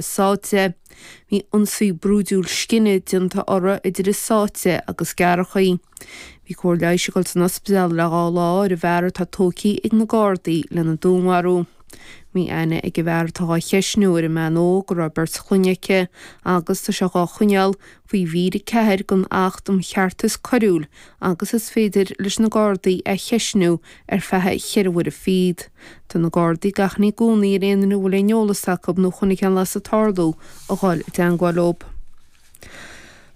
sáite. Bhí ionsaí brúidiúil scine déanta orthu idir í sáite agus gearradh. Bhí cóir leighis ag dul san ospidéal le dhá lá ar an bhfear atá tógtha ag na Gardaí lena dúnmharú. Bhí aithne ag an bhfear atá dhá cheistniú ar an mbean óg go raibh beirt clainne aici agus tá sé dhá choinneáil faoi mhír a 4 den Acht um Cheartas Coiriúil agus is féidir leis na Gardaí é a cheistniú ar feadh cheithre huaire fichead. Tá na Gardaí ag achainí i gcónaí ar aon duine a bhfuil aon eolas acu nó a chonaic aon bhlas ag tarlú a dhul i dteangmháil leo.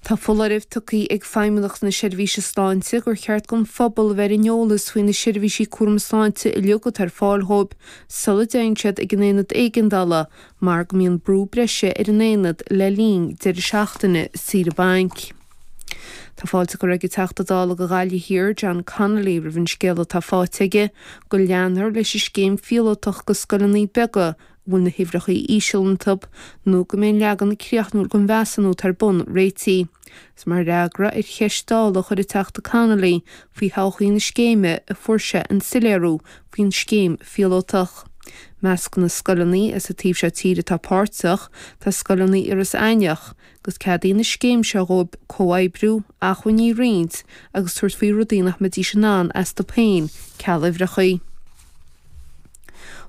Tá foláireamh tugtha ag Feidhmeannacht na Seirbhíse Sláinte gur cheart don phobal a bheith ar an eolas faoi na seirbhísí cúram sláinte uilig atá ar fáil dhóibh sula dtéann siad ag an aonad éigeandála mar go mbíonn brú breise ar an aonad le linn deireadh seachtaine saoire bainc. Tá fáilte curtha ag an Teachta Dála do Ghaillimh Thiar, John Connolly, roimh an scéala atá faighte aige go leanfar leis an scéim phíolótach do scoileanna beaga a bhfuil na huimhreacha íseal iontu nó go mbeidh an leagan críochnúil den mheasúnú atá ar bun réitigh. Is mar fhreagra ar cheist Dála a chuir an Teachta Connolly faoi thodhchaí na scéime a fuair sé an soiléiriú faoin scéim phíolótach. I measc na scoileanna as an taobh seo tíre atá páirteach, tá scoileanna Iorras Aithnigh, agus ceadaíonn an scéim seo dhóibh comhoibriú, acmhainní a roinnt agus tabhairt faoi rudaí nach mbeidís in ann astu féin, ceal uimhreacha.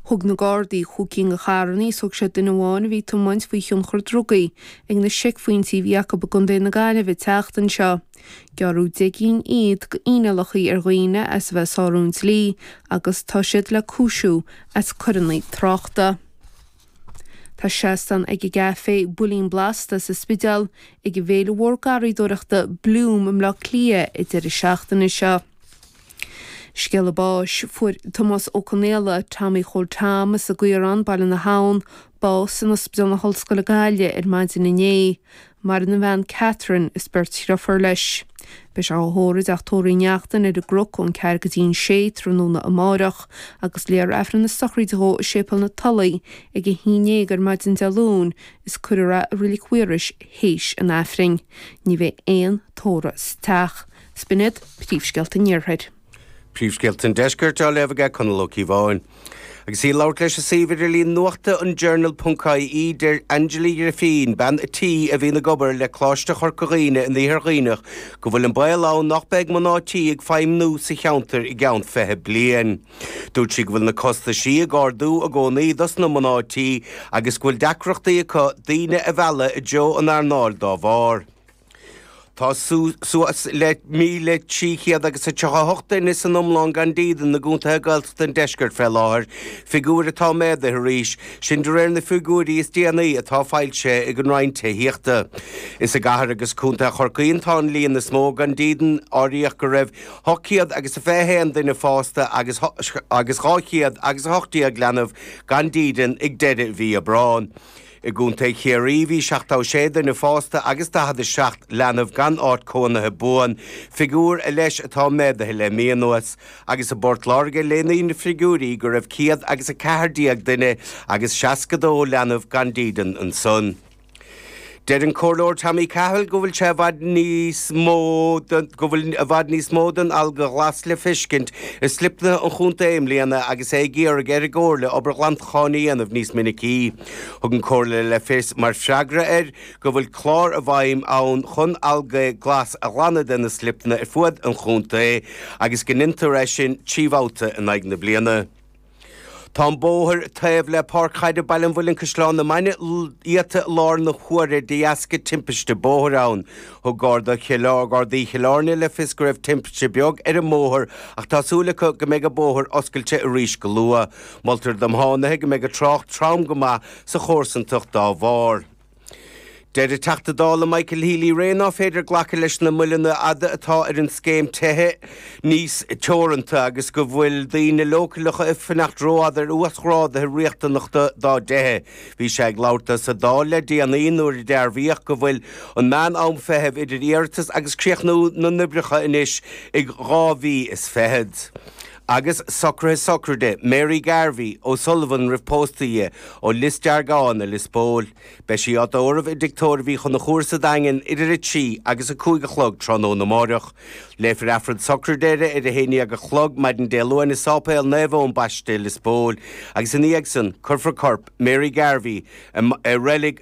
Thug na Gardaí chúig cinn de charrannaí is thóg siad duine amháin a bhí ag tiomáint faoi thionchar drugaí ag na seicphointí a bhí acu i gContae na Gaillimhe an tseachtain seo. Gearradh deich gcinn fhichead d'fhíneálacha ar dhaoine as a bheith ag sárú an dlí agus tá siad le cúisiú as coireanna tráchta. Tá seastán ag an gcaifé Builín Blasta sa Spidéal ag an bhféile mhór garraíodóireachta Bloom i mBleá Cliath an deireadh seachtaine seo. Scéala báis, Fuair Tomás Ó Conaola, Tommy Chóil Tom, as an gCaorán, Baile na hAbhann, bás in Ospidéal na hOllscoile Gaillimh ar maidin inné. Maireann a bhean Catherine is beirt dhriofúr leis. Beidh sé á thórramh ag Teach Tórraimh Uí Neachtain ar an gCnoc ón ceathair go dtí an sé tráthnóna amárach agus léifear aifreann na sochraide dhó i Séipéal na Tulaí ag a haon déag ar maidin Dé Luain is cuirfear é i Reilic Mhaorais théis an aifrinn. Ní bheidh aon tórramh sa teach. B'shin iad príomhscéalta an Iarthair. Príomhscéalta an Deiscirt á léamh aige Conall Ó Cíobháin. Agus í ag labhairt leis an suíomh idirlín nuachta an Journal ponc ie deir Angela Griffin, bean an tí a bhíonn ag obair le Coláiste Chorca Dhuibhne in Iarthar Dhuibhneach, go bhfuil an baol ann nach mbeidh mná tí ag feidhmniú sa cheantar i gceann fiche bliain. Dúirt sí go bhfuil na costaisí ag ardú i gcónaí dos na mná tí agus go bhfuil deacrachtaí acu daoine a mhealladh i dtreo an earnáil dá bharr. Tá suas le 1,300 agus a 38 duine san iomlán gan dídean i gcontaetha Gaeltachta an deiscirt fé láthair, figiúr atá méadaithe arís, sin de réir na figiúirí is déanaí atá foilsithe ag an Roinn Tithíochta. Is i gcathair agus contae Chorcaí atá an líon is mó gan dídean, áiríodh go raibh 800 agus a 21 duine fásta agus 200 agus 18 leanbh gan dídean ag deireadh mhí Aibreáin. I gContae Chiarraí bhí 76 duine fásta agus 47 leanbh gan áit cónaithe buan, figiúr a leis atá méadaithe le mí anuas, agus i bPort Láirge léiríonn na figiúirí go raibh 114 duine agus 62 leanbh gan dídean ansan. Deir an Comhairleoir Tommy Cahill go bhfuil sé i bhfad níos mó den go bhfuil i bhfad níos mó den alga ghlas le feiscint i slipnaithe an chontae i mbliana agus é ag iarraidh ar an gComhairle obair ghlantacháin a dhéanamh níos minicí. Thug an Comhairle le fios, mar freagra air, go bhfuil clár i bhfeidhm ann chun alga glas a ghlanadh de na slipeanna ar fuaid an chontae agus go ndeintear é sin trí bhabhta in aghaidh na bliana. Tá an bóthar taobh le Páirc Chaide Baile an Mhuilinn-Caisleán na Mainge iata i láthair na huaire de dheasca timpiste bóthair ann. Thug Gardaí Chill Airne le fios go raibh timpiste beag ar an mbóthar ach tá súil acu go mbeidh an bóthar oscailte arís go luath. Moltar do thiománaithe go mbeidh an trácht trom go maith sa chomharsantacht dá bharr. Deir an Teachta Dála Michael Healy-Rae nach féidir glacadh leis na moilleanna fhada atá ar an scéim tithe níos teoranta agus go bhfuil daoine leochaileacha ag fanacht rófhada ar uasghráduithe riachtanachta dá dtithe. Bhí sé ag labhairt sa Dáil le déanaí nuair a dearbhaíodh go bhfuil an meán-am feithimh idir iarratas agus críochnú na n-oibreacha anois ag dhá mhí is fichead. Agus socruithe sochraide Mary Garvey, O'Sullivan roimh pósadh di, ó Lios Deargáin i Lios Póil. Beidh sí á tórramh i dtigh tórraimh Uí Chonchúir sa Daingean idir a trí agus a cúig a chlog tráthnóna amáireach. Léifear Aifreann sochraide uirthi ar a haon dhéag a chlog maidin Dé Luain i Sáipéal Naomh Eoin Baiste i Lios Póil agus ina dhiaidh san cuirfear corp Mary Garvey i Reilig